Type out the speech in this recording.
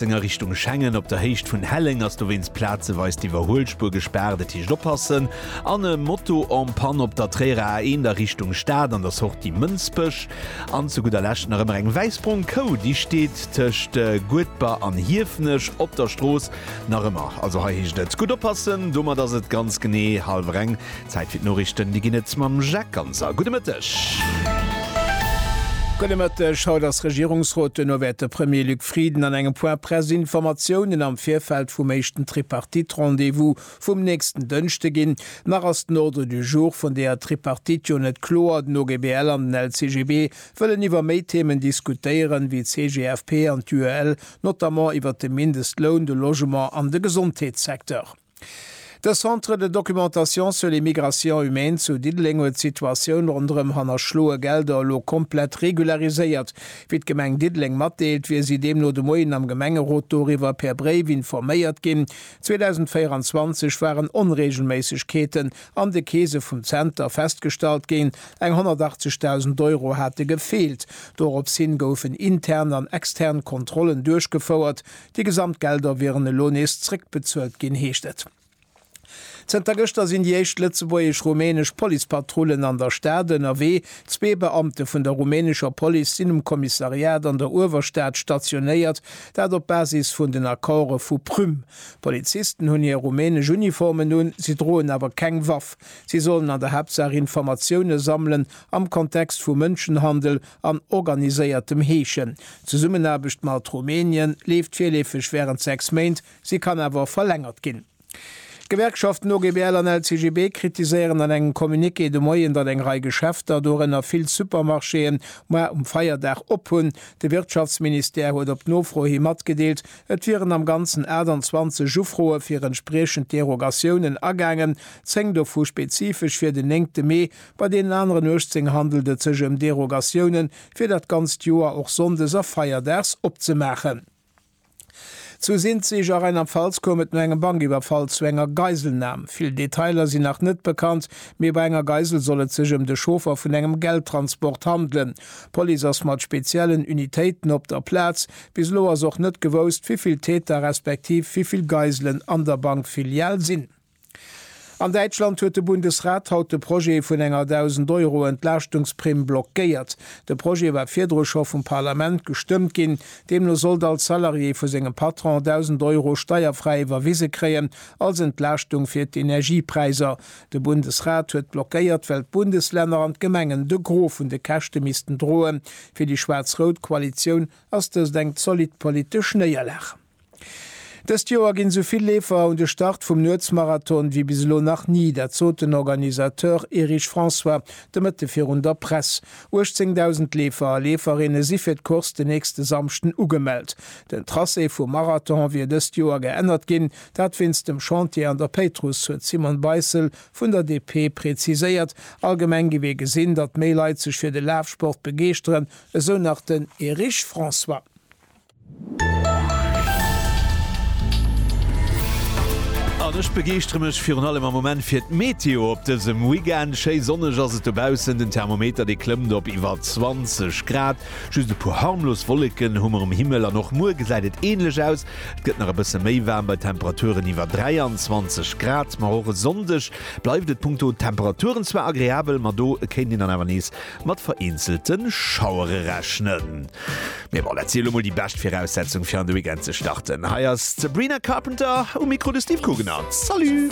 Zëng a Richtung Schengen. Op der Héicht vun Helleng ass dowéinst plazeweis d'Iwwerhuelspuer gespaart, et heescht oppassen. An e Moto en panne op der Tréierer A1 a Richtung Stad an der Sortie Mënsbech. An zu gudder Lescht nach ëmmer eng wäiss-brong Kou, déi steet tëscht Guedber an Hiefenech op der Strooss nach ëmmer. Also hei heescht et gutt oppassen. Domat ass et ganz genee hallwer eng Zäit fir d'Noriichten. Déi ginn et mam Jacques Ganser. Gudde Mëtteg. Gudde Mëtteg. Haut ass Regierungsrot. Duerno wäert de Premier Luc Frieden an engem Point Presse Informatiounen am Virfeld vum éischten Tripartite-Rendez-vous vum nächsten Dënschde ginn. Nach ass den Ordre du jour vun deeër Tripartite jo net kloer. Den OGBL an den LCGB wëllen iwwer méi Themen diskutéieren, wéi d'CGFP an d'UEL, notamment iwwer de Mindestloun, de Logement an de Gesondheetssecteur. De Centre de documentation sur les migrations humaines zu Diddeleng huet d'Situatioun ronderëm hannerschloe Gelder elo komplett regulariséiert. Wéi d'Gemeng Diddeleng matdeelt, wier si deemno de Moien am Gemengerot doriwwer per Bréif informéiert ginn. 2024 waren Onreegelméissegkeeten an de Keese vum Zenter festgestallt ginn, eng 180.000 Euro hate gefeelt. Dorops hin goufen intern an extern Kontrollen duerchgefouert, Déi gesamt Gelder wieren elo nees zréckbezuelt ginn, heescht et. Zënter gëschter sinn déi éischt lëtzebuergesch-rumänesch Policepatrullen an der Stad ënnerwee. Zwee Beamte vun der rumänescher Police sinn um Kommissariat an der Uewerstad stationéiert, dat op Basis vun den Accorde vu Prüm. D'Polizisten hunn hir rumänesch Uniformen un, si droen awer keng Waff. Si sollen an der Haaptsaach Informatioune sammelen am Kontext vu Mënschenhandel an organiséiertem Heeschen. D'Zesummenaarbecht mat Rumänien leeft virleefeg wärend 6 Méint, si kann awer och verlängert ginn. D'Gewerkschaften OGBL an LCGB kritiséieren an engem Communiqué de Moien, datt eng Rei Geschäfter, dorënner vill Supermarchéen, muer um Feierdag op hunn. De Wirtschaftsministère huet op Nofro hi matgedeelt, et wieren am Ganzen 28 Ufroe fir entspriechend Derogatiounen agaangen, 10 dovu spezifesch fir den 9 Mee, Bei deenen aneren 18 handelt et sech ëm Derogatiounen, fir dat ganzt Joer och sonndes a feierdags opzemaachen. Zu Sinzig a Rheinland-Pfalz koum et no engem Bankiwwerfall zu enger Geiselnam. Vill Detailer sinn nach net bekannt, mee bei enger Geisel soll et sech ëm de Chauffer vun engem Geldtransport handelen. D'Police ass mat speziellen Unitéiten op der Plaz. Bis elo ass och net gewousst, wéi vill Täter respektiv wéi vill Geiselen an der Bankfilial sinn. An Däitschland huet de Bundesrat haut de Projet vun enger 1.000 Euro Entlaaschtungsprimm blockéiert. De Projet war virdru scho vum Parlament gestëmmt ginn. Deemno sollt all Salarié vu sengem Patron 1.000 Euro steierfräi iwwerwise kréien als Entlaaschtung fir d'Energiepräiser. De Bundesrat huet blockéiert, well d'Bundeslänner an d'Gemengen de Gros vun de Käschte missten droen. Fir déi schwaarz-rout Koalitioun ass dëst eng zolidd politesch Néierlag. Dëst Joer ginn esou vill Leefer un de Start vum Nuetsmarathon wéi bis elo nach ni. Dat sot den Organisateur Erich François de Mëtte virun der Press. 18.000 Leefer a Leeferinne si fir d'Course den nächste Samschden ugemellt. Den Tracé vum Marathon wier dëst Joer geännert ginn, dat wéinst dem Chantier an der Péitruss, huet d'Simone Beissel vun der DP preziséiert. Allgemeng gi mir gesinn, datt méi Leit sech fir de Lafsport begeeschteren, esou nach den Erich François. An ech begeeschtere mech virun allem am Moment fir d'Meteo op dësem Weekend. Schéi sonneg ass et dobaussen, den Thermometer dee klëmmt op iwwer 20 Grad. Just e puer harmlos Wolleken hu mer um Himmel an och muer gesäit et änlech aus. Et gëtt nach e bësse méi waarm bei Temperaturen iwwer 23 Grad. Ma och e Sonndeg bleift et punkto Temperaturen zwar agreabel, ma do kéint een dann awer nees Mat vereenzelte Schauere rechnen. Mee bon, dat si elo mol déi bescht Viraussetzung fir an de Weekend ze starten. Hei ass d'Sabrina Carpenter um Mikro, de Steve Kugener. Salut!